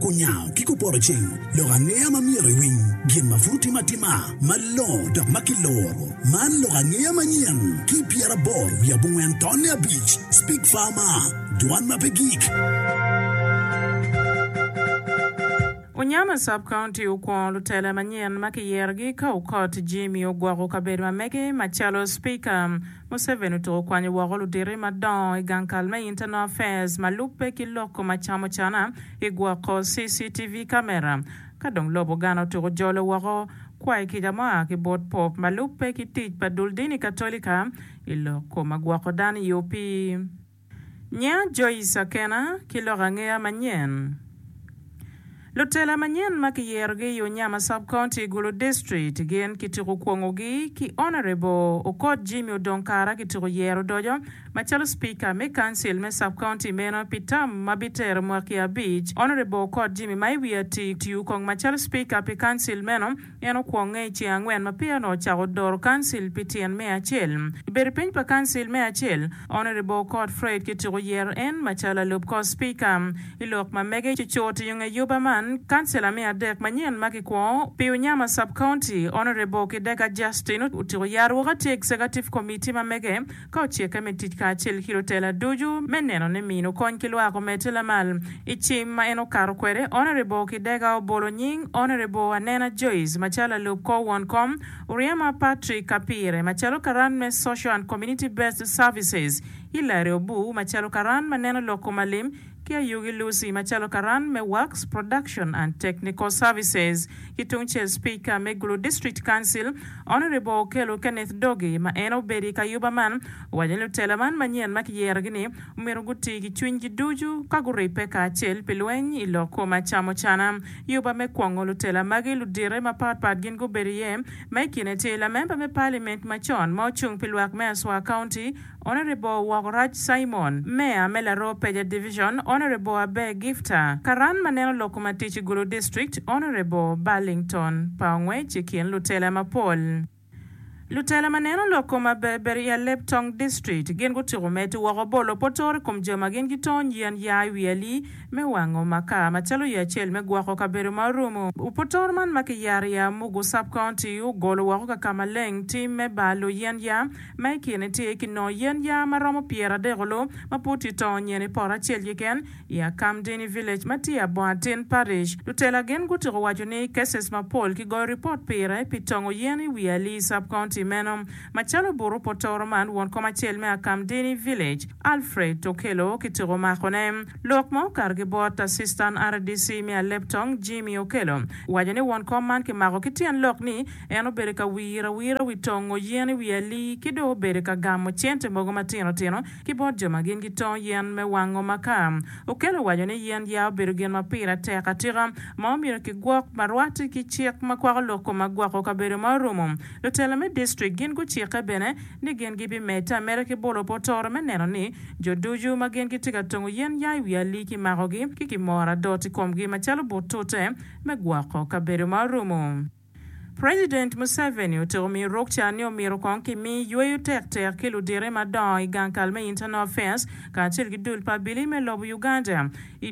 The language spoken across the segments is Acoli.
Kunyango ki kupoto cing, lok angeya ma myero iwiny, gin ma pud otime atima malongo dok ma kiloro. Man lok angeya manyen ki pyeraboro wiye abongwen tonne abic, Speak Farmer, Dwan ma pe gik. Unyama Sub-County okwongo lutele manyen ma kiyerogi ka Okot Jimmy ogwoko kabedo ma mege macalo Speaker. Museveni otuko kwanyo woko ludito madongo i gang kal me Internal Affairs ma lubbe ki loko macamocana i gwoko CCTV camera. Ka dong lobo Ghana otuko jolo woko kwayo kica ma oa ki bot Pope ma lubbe ki tic pa dul dini Katolika i loko ma gwoko dano i opii. Nya Joyce Akena ki lok angeya manyen. Lutela manyen ma kiyerogi i Unyama Sub County, Gulu District gin kituko kwongogi ki Honourable Okot Jimmy Odong Kara kituko yero odoco macalo Speaker me Council me Sub County meno pi term ma bitero mwaki abic. Honourable Okot Jimmy ma i wiye atir tiyo kong macalo Speaker pi Council meno. En okwonge i ceng angwen ma peya onongo ocako doro kancil pi tyen me acel. I bedo piny pa kancil me acel, Honourable Cort Fred kityeko yero en macalo alup kor Spika. I lok ma mege, cucut i nge yuba man, kancila me adek manyen ma kikwo pi Unyama Sub-County, Honourable Kidega Justin otyeko yaro woko atir Executive Committee ma mege, Ka ocikke me tic kacel ki lutela ducu me neno ni mino kony ki lwak omedde lamal, i cim ma en okato kwede, Honourable Kidega obolo nying Honourable Anena Joyce macalo lalub kor won kom, Uriema Patrick Kapire macalo karan me Social and Community Based Services, Hillary Obu macalo karan ma neno lok kom alim, ki ayugi Lucy macalo karan me Wax Production and Technical Services ki tungcel Speaker me Gulu District Council Honourable Okello Kenneth Doge ma en obedo i kayuba man owaco ni lutela man manyen ma kiyerogi ni omyero guti ki cwinygi ducu ka guribbe kacel pi lweny i lok koma camocana yuba me kwongo lutela magi ludite mapatpat gin gubedo iye ma i kine tye lamemba me Parliament macon ma ocung pi lwak me Aswa County Honourable Wokorac Simon, Mayor me Laroo Peja Division, Honourable Aber Gifta, Karan ma neno lok ma tic i Gulu District, Honourable Burlington pa ongwec i kin lutela mapol. Lutela ma neno lok kom aberber i Aleb Tong District gin gutyeko medo woko bolo potor i kom jo ma gin gitony yen ya i wi ali me wango makar macalo yo acel me gwoko kabedo ma orumo potor man ma kiyaro i Amugu Sub-County ogolo woko ka ka maleng tim me balo yen ya Ma i kine tye ki noo yen yaa ma romo pyeradekoloo ma pud tye tongo nyen i poto acel keken i Akamdini Village ma tye i Abongatin Parish. Lutela gin gutyeko waco ni cases mapol ki goyo ripot pire pi tongo yen i wi Alii Sub-County meno macalo buto potoro man won kom acel me Akamdini Village Alfred Okello kityeko mako ne lok ma okato ki bot Assistant rdc me Aleptong Jimmy Okello waco ni won kom man kimako ki tyen lok ni En obedo ka wiro awira wi tongo yen i wi alii ki dong obedo ka gamo cente mogo matino tino ki bot jo ma gin gitongo yen me wango makaa. Okello owaco ni yen yaa obedo gin ma pire tek atika ma omyero kigwok ma rwate ki cik ma kwako lok koma gwoko kabedo ma orumo. Lutela me distrik gin gucikke bene ni gin gibimedde ameda ki bolo potoro me neno ni jo ducu ma gin gitye ka tongo yen yaa i wi alii kimakogi ki kimoro adot i komgi macalo butute me gwoko kabedo ma orumo. President Museveni otiko miyo Rukca ni omyero kong kimi yweyo tektek ki ludite madongo i gang kal me Internal Affairs kacel ki dul pa Abili me lobo Uganda i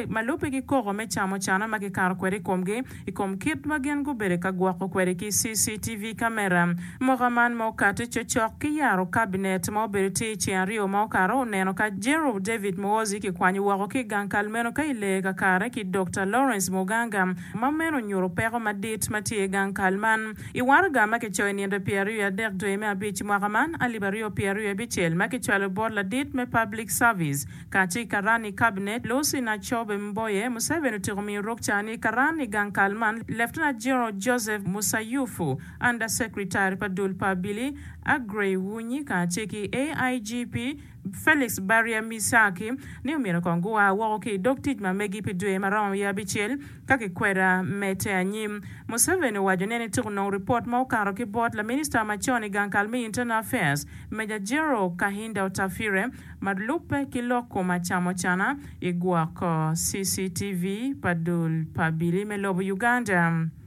ma lubbe ki koko me camo cana ma kikato kwede i komgi i kom kit ma gin gubedo ka gwoko kwede ki CCTV camera mwaka man ma okati cocok ki yaro Cabinet ma obedo tye i ceng aryo ma okato oneno ka General David Muhoozi kikwanyo woko ki i gang kal meno ka i lee kakare ki Doctor Lawrence Muganga ma meno nyuto peko madit ma tye i gang kal man. I waraga ma kicoyo i nino pyeraryo i adek dwe me abic i mwaka man alip aryo pyeraryo i abicel ma kicwalo bot ladit me Public Service kacel ki karan i Kabinet Lucy Nacobe Mboye, Museveni otyeko miyo rok ca ni karan i gang kal man Lieutenant General Joseph Musayufu, Under Secretary pa dul pa Abili Aggrey Wunyi kacel ki AIGP Felix Barya-Misaki ni omyero kong gua woko ki i dog tic ma megi pi dwe ma romo wiye abicel ka kikweda me te anyim. Museveni owaco nen itika onongo ripot ma okato ki bot laminista macon i gang kal me Internal Affairs, Major General Kahinda Otafire, ma lubbe ki lok kom acamocana i gwoko CCTV pa dul pa abili me lobo Uganda.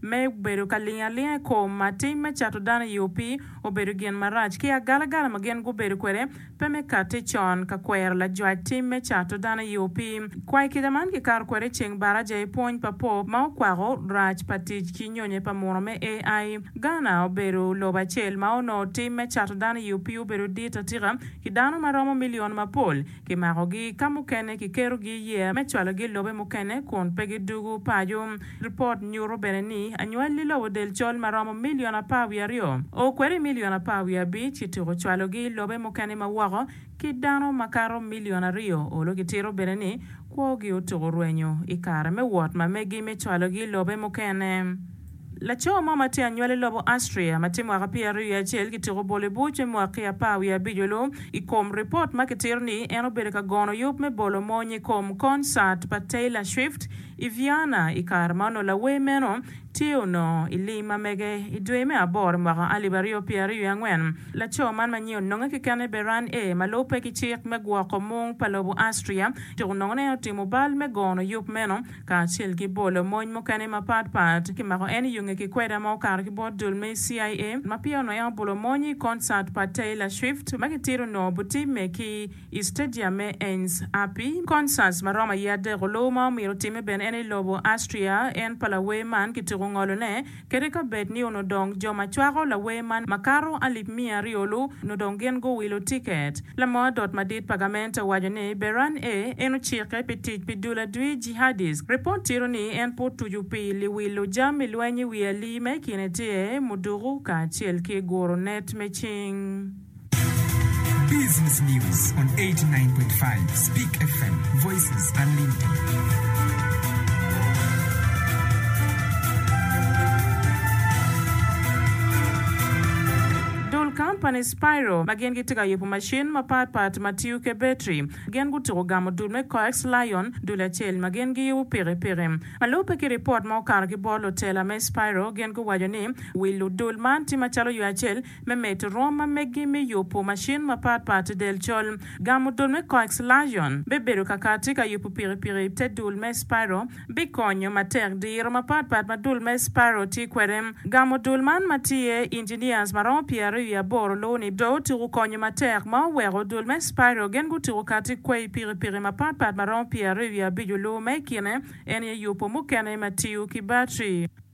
me bedo ka lingo alinga i kom ma tim me cato dano i opi obedo gin marac ki agalagala ma gin gubedo kwede pe me katte con ka kwero lajwac tim me cato dano i opi. Kwai kica man kikato kwede i ceng baraja i pwony pa Pope ma okwako rac pa tic ki nyonye pa muno me AI. Ghana obedo lobo acel ma onongo tim me cato dano i opi obedo dit atika ki dano ma romo milion mapol. Kimakogi ka mukene kikerogi i yeya me cwalogi i lobe mukene kun pe gidwogo paco. Ripot nyuto bene ni anywali lobo del col ma romo milion apar wiye aryo o kwede milion apar wiye abic kituko cwalogi i lobe mukene ma woko ki dano makato milion aryo olo kitito bene ni kwogi otuko rwenyo i kare me wot ma megi me cwalogi i lobe mukene. Laco mo ma tye anywal i lobo Austria ma tye mwaka pyeraryo wiye acel kituko bolo i buc me mwaki apar wiye abico-lu i kom ripot ma kitito ni en obedo ka gono yub me bolo mony i kom konsat pa Taylor Swift i Vienna i kare ma onongo lawer meno tye onongo i lim ma mege i dwe me aboro i mwaka alip aryo pyeraryo wiye angwen. Laco man ma nyinge ononge kekene Beran A. ma lubbe ki cik me gwoko mung pa lobo Austria tuko nongo ni en otimo bal me gono yub meno kacel ki bolo mony mukene mapat pat. Kimako en i yunge ki kweda ma okato ki bot dul me CIA ma pire onongo en obolo mony i concert pa Taylor Swift ma gitito onongo obitimme ki i stadium me Ains Api. Concerts ma romo aye adek oluwo ma omyero otimme bene en i lobo Austria en pa lawer man kituko ngolone. Kadi ka bed ni onongo dong jo ma cwako lawer man makato alip miya aryo-lu onongo dong gin guwilo tiket, lamo adot madit pa gament owaco ni Beran A en ocikke pi tic pi dul adwi, jihadist. Ripot tito ni en pe otucu pi liwilo jami lweny i wi alii ma i kine tye muduku kacel ki guro net me cing. Business News on 89.5 Speak FM, Voices Unlimited. Dul kampani Spiro ma gin gitye ka yubo macin mapat pat ma tiyo ki betri. Gin gutuko gamo dul me Coax Lion, dul acel ma gin giyubo pikipiki. Ma lubbe ki ripot ma okato ki bot lutela me Spiro, gin guwaco ni wil ludul man tye macalo yo acel Me medo rwom ma megi me yubu macin mapat pat del col, gamo dul me coax lion me bedo kakati ka yubu pikipiki i te dul me spiral bikonyo matek. Diro mapat pat ma dul me spiral tye kwede, gamo dul man ma tye engineers ma romo pyeraryo i aboro luwo ni do otuku konyo matek ma oweko dul me spiral gin gutuku kati kwei pikipiki mapat pat ma romo pyeraryo i abico luwo ma ikine en aye yubu mukene ma tiyo ki battery.